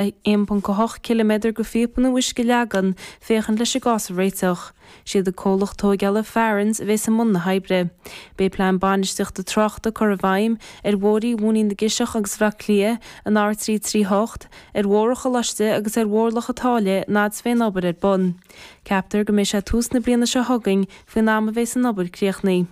1.8 km go phíopaí uisce a leagan, féachaint leis an gcás a réiteach. Siad an comhlacht tóigeála Farrans a bheas i mbun na hoibre. Beidh plean bainistíochta tráchta curtha i bhfeidhm ar Bhóithrí Mhóinín na gCiseach agus Bhaile Átha Cliath an R338, ar Bhóthar an Choláiste agus ar Bhóthar Loch an tSáile an fhad a bheas an obair ar bun. Ceaptar go mbeidh sé tús na bliana seo chugainn faoin am a bheas an obair críochnaithe.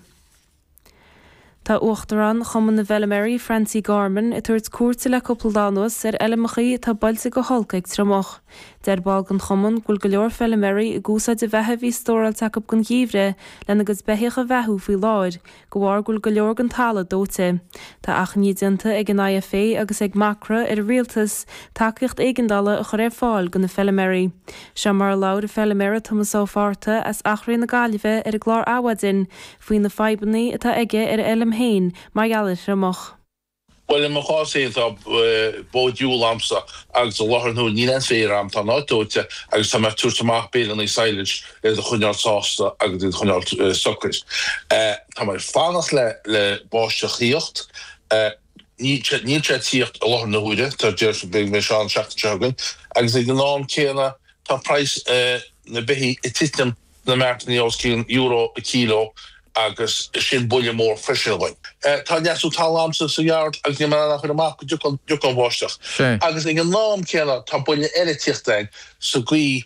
Tá Uachtarán Chumann na bhFeilméaraí Francie Gorman ag tabhairt cuairte le cúpla lá anuas ar fheilmeachaí atá buailte go holc ag an triomach. Deir ball den Chumann go bhfuil go leor feilméaraí ag úsáid an bheatha a bhí stóráilte acu don gheimhreadh lena gcuid beithíoch a bheathú faoi láthair de bharr go bhfuil go leor den talamh dóite. Tá achainí déanta ag an IFA agus ag Macra ar an Rialtas tacaíocht éigeandála a chur ar fáil do na feilméaraí. Seo mar a labhair an feilméara Tomás Ó Fathartaigh as Eachréidh na Gaillimhe ar an gclár Adhmhaidin faoi na fadhbanna atá aige ar a fheilm féin mar gheall ar an triomach. Bhuel, i mo chás féin, tá bó diúil agamsa agus i láthair na huaire níl aon féar agam, tá an áit dóite agus tá mé ag tabhairt amach bales sadhlais iad a choinneáil sásta agus iad a choinneáil socair. Tá mé ag fanacht le báisteach a thíocht, níl sé ag tíocht i láthair na huaire, deir siad go mbeidh sé ann an tseachtain seo chugainn, agus ag an am céanna tá praghas na beithígh ag titim. na mairt os cionn euro an kilo agus sin buille mór freisin againn. Tá leasú talún agamsa sa yard agus níl mé in ann a chur amach go dtiocfadh an bháisteach agus ag an am céanna tá buille eile ag tíocht sa gcaoi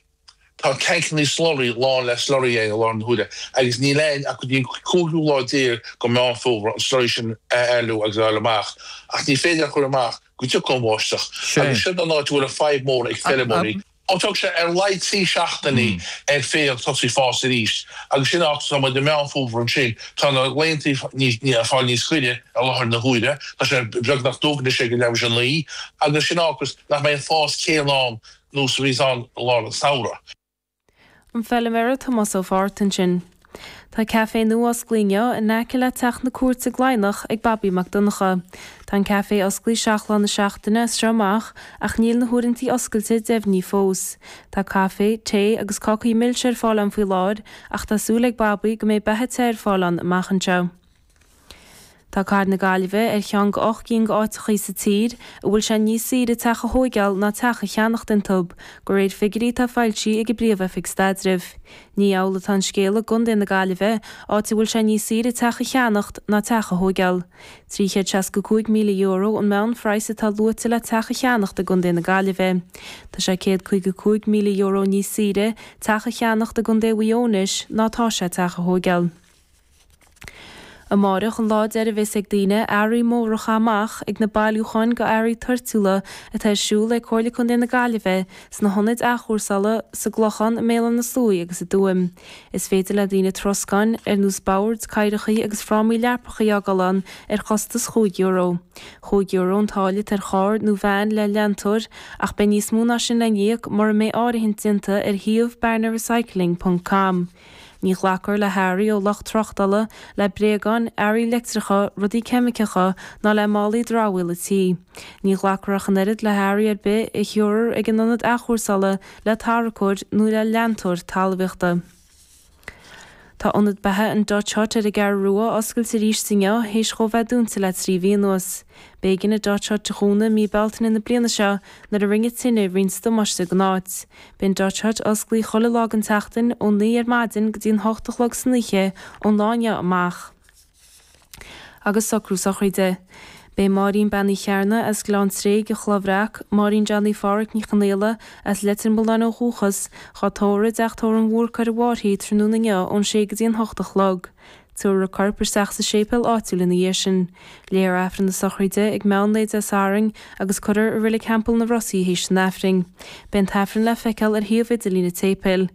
tá tancannaí slurry lán le slurry i láthair na huaire agus níl againn ach go dtí an cúigiú lá déag go Meán Fómhair an slurry sin a éalú agus a fháil amach ach ní féidir a chur amach go dtiocfadh an bháisteach agus sin an áit a bhfuil an fadhb mór ag feirmeoirí. Ó tógfaidh sé ar laghad trí seachtainí ar féar tosú ag fás arís, agus sin fágfaidh sé muid i Meán Fómhair ansin, tá na laethantaí ag fáil níos giorra i láthair na huaire, tá sé beagnach dubh anois ag leathuair théis a 9, agus sin an fáth nach mbeidh an fás céanna ann nós a bhíonns ann i lár an samhradh. an feilméara Tomás Ó Fathartaigh ansin. Tá café nua osclaithe inniu in aice le Teach na Cúirte i gCladhnach ag Bobby Mac Donncha. Tá an café osclaithe seacht lá na seachtaine as seo amach ach níl na huaireantaí oscailte deimhnithe fós. Tá caife, tae agus cácaí milse ar fáil ann faoi láthair ach tá súil ag Bobby go mbeidh beatha te ar fáil ann amach anseo. Tá Cathair na Gaillimhe ar cheann go 8 gcinn d'áiteachaí sa tír a bhfuil sé níos saoire teach a thóigeáil ná teach a cheannacht inti, go réir figirí atá foilsithe ag an bPríomh-Oifig Staidrimh. Ní amhlaidh atá an scéal i gContae na Gaillimhe, áit a bhfuil sé níos saoire teach a cheannacht ná teach a thóigeáil. €365,000 an meánphraghas atá luaite le teach a cheannacht i gContae na Gaillimhe. Tá sé €155,000 níos saoire teach a cheannacht i gContae Mhaigh Eo anois ná atá sé teach a thóigeáil. Amárach an lá deiridh a bheas ag daoine earraí móra a chaith amach ag na bailiúcháin go earraí toirtiúla atá ar siúl ag Comhairle Contae na Gaillimhe sna hionaid athchúrsála sa gClochán, i mBéal an na Sluaigh agus i dTuaim. Is féidir le daoine troscáin ar nós boird, cathaoireachaí agus frámaí leapachaí a fhágáil ann ar chostas chúig euro. Chúig euro an táille atá ar charr nó veain le leantóir ach beidh níos mó ná sin le n-íoc mura mbeidh áirithint déanta ar shuíomh Barna Recycling ponc com. Ní ghlacfar le hearraí ó lucht tráchtála, le bréagáin, earraí leictreacha, rudaí ceimiceacha ná le málaí dramhaíola tí. Ní ghlacfar ach an oiread le hearraí ar bith a thiocfas ag an ionad athchúrsála, le tarracóir nó le leantóir talmhaíochta. Tá ionad beatha an Dot Hut ar an gCeathrú Rua oscailte arís inniu théis dhó bheith dúnta le trí mhí anuas. B'éigean an Dot Hut a dhúnadh mí Bealtaine na bliana seo nuair a rinne tine roinnt damáiste gon áit. Beidh an Dot Hut osclaithe chuile lá den tseachtain ón naoi ar maidin go dtí an hocht a chlog san oíche ón lá inniu amach. Agus socrú sochraide. Beidh Máirín Bean Uí Chearna as Gleann Tréig, an Chloch Bhreac, Máirín Johnny Phádraic Ní Chonghaile as Leitir Mealláin ó dhúchas, dhá tórramh i dteach tórraimh an Bhúrcaigh ar an bhFairche tráthnóna inniu ón sé go dtí an hocht a chlog. Tabharfar a corp isteach sa séipéal áitiúil ina dhiaidh sin. Léifear Aifreann na sochraide ag meán lae Dé Sathairn agus cuirfear i Reilig Theampall na Rosaí théis an Aifrinn. Beidh an tAifreann le feiceáil ar shuíomh idirlín an tséipéil.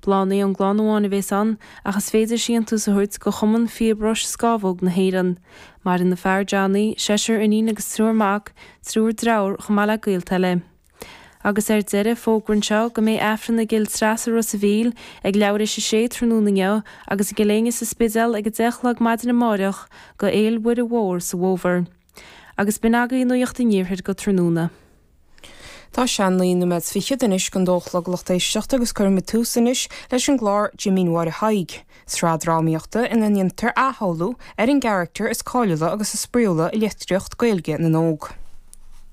Bláthanna ón gclann amháin a bhéas ann ach is féidir síontiús a thabhairt go Chumann Fíobróis Scámhóg na hÉireann. Maireann a fear, Johnny, seisear iníon agus triúr mac, triúr dreatháir, chomh maith le gaolta eile. Agus ar deireadh, fógra anseo go mbeidh Aifreann i gCill Treasa Ros a' Mhíl ag leathuair théis 6 tráthnóna inniu agus i gCill Éinne sa Spidéal ag 10 a chlog maidin amáireach go Fhéil' Mhuire Mhór sa bhFómhar. Agus b'in agaidh nuaíocht an iarthair go tráthnóna. Tá sé naoi noiméad fichead anois gon 2 a chlog lucht éisteachta agus cuirfimid tús anois leis an gclár Jimín Mháire Thaidhg, sraith drámaíochta ina ndeintear athshamhlú ar an gcaractar is cáiliúla agus is spraíúla i litríocht Gaeilge na n-óg.